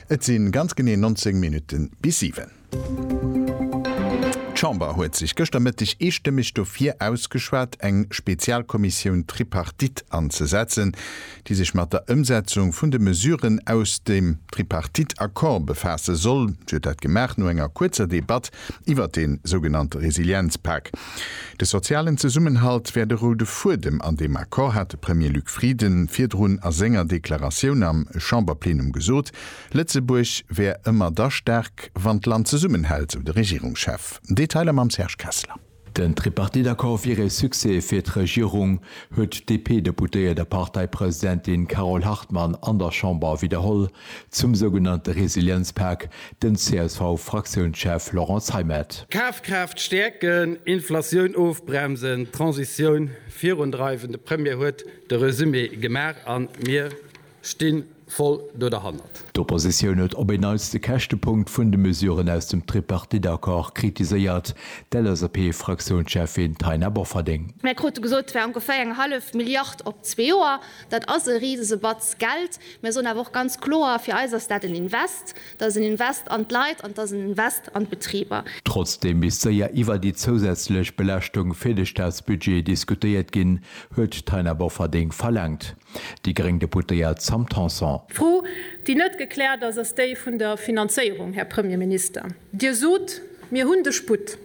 Et si ganz genee 19 Minutte bis siwen. D'Chamber huet sech gëschter Mëtteg eestëmmeg dofir ausgeschwat, eng Spezialkommissioun Tripartite anzesetzen, déi sech mat der Ëmsetzung vun de Mesuren aus dem Tripartite-Accord befaasse soll. Si huet dat gemaach no enger kuerzer Debatt iwwert dee sougenannte Resilienzpak. De sozialen Zesummenhalt wär de roude Fuedem an deem Accord, hat de Premier Luc Frieden virdrun a senger Deklaratioun am Chamberplenum gesot. Lëtzebuerg wär ëmmer da staark, wann d'Land zesummenhält, sou de Regierungschef. Detailer mam Serge Kessler. Den Tripartite-Accord wier ee Succès fir d'Regierung, huet d'DP-Deputéiert a Parteipresidentin Carole Hartmann an der Chamber widderholl. Zum sougenannte Resilienzpak den CSV-Fraktiounschef Laurent Zeimet. D'Kafkraaft stäerken, Inflatioun ofbremsen, d'Transitioun virundreiwen, de Premier huet de Resumé gemaach a mir sti voll do derhannert. D'Oppositioun huet op een Neits de Käschtepunkt vun de Mesuren aus dem Tripartite-Accord kritiséiert, d'LSAP-Fraktiounscheffin Taina Bofferding. Mir krute gesot, et wär ongeféier eng hallef Milliard op zwee Joer. Dat ass e risese Batz Geld. Mir soen awer och ganz kloer, fir eis ass dat en Invest, dat ass en Invest an d'Leit an et ass en Invest an d'Betriber. Trotzdeem misst séier iwwer déi zousätzlech Belaaschtung fir de Staatsbudget diskutéiert ginn, huet d'Taina Bofferding verlaangt. Déi gréng Deputéiert Sam Tanson. D'Fro, déi net gekläert ass, ass déi vun der Finanzéierung, Här Premierminister. Dir sot, mir hunn de Sputt.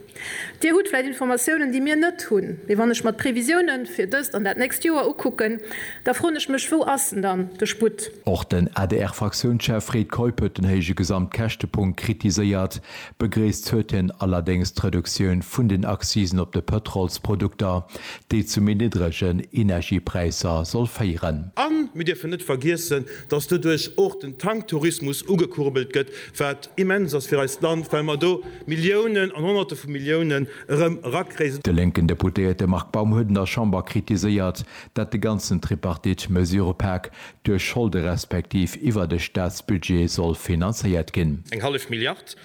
Dir hutt vläicht Informatiounen, déi mir net hunn. Mee wann ech mer d'Previsioune fir dëst an dat nächst Joer ukucken, da froen ech mech, Wou ass en dann, de Sputt? Och den ADR-Fraktiounschef Fred Keup huet den héije Gesamtkäschtepunkt kritiséiert. Begréisst huet hien allerdéngs d'Reduktioun vun den Accisen op de Pëtrolsprodukter, déi zu méi niddregen Energiepräisser soll féieren. A mir dierfen net vergiessen, datt doduerch och den Tanktourismus ugekurbelt gëtt, Wat immens ass fir eist Land, well mer do Milliounen an Honnerte vu Milliounen erëm erakréien. De lénken Deputéierte Marc Baum huet an der Chamber kritiséiert, dat de ganzen Tripartite-Mesurëpak duerch Scholde respektiv iwwert e Staatsbudget soll finanzéiert ginn. Eng hallef Milliard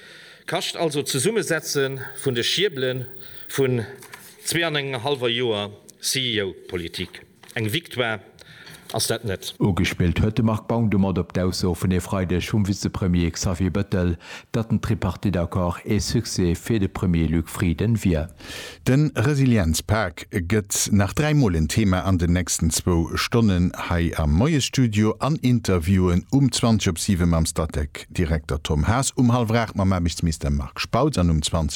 kascht also d'Zesummesetze vun de Schiebele vun Zwee an engem hallwer Joer CEO-Politik, eng Victoire ass dat net. Ugespillt huet de Marc Baum domat op d'Ausso vun e Freideg vum Vizepremier Xavier Bettel, datt den Tripartite-Accord ee Succès fir de Premier Luc Frieden wier. De Resilienzpak gëtt nach dräi Mol en Thema an den nächsten zwou Stonnen hei am Moiesstudio an Interviewen, um 20 op 7 mam Statec-Direkter Tom Haas, um hallef 8 mam Aarbechtsminister Marc Spautz an um 20.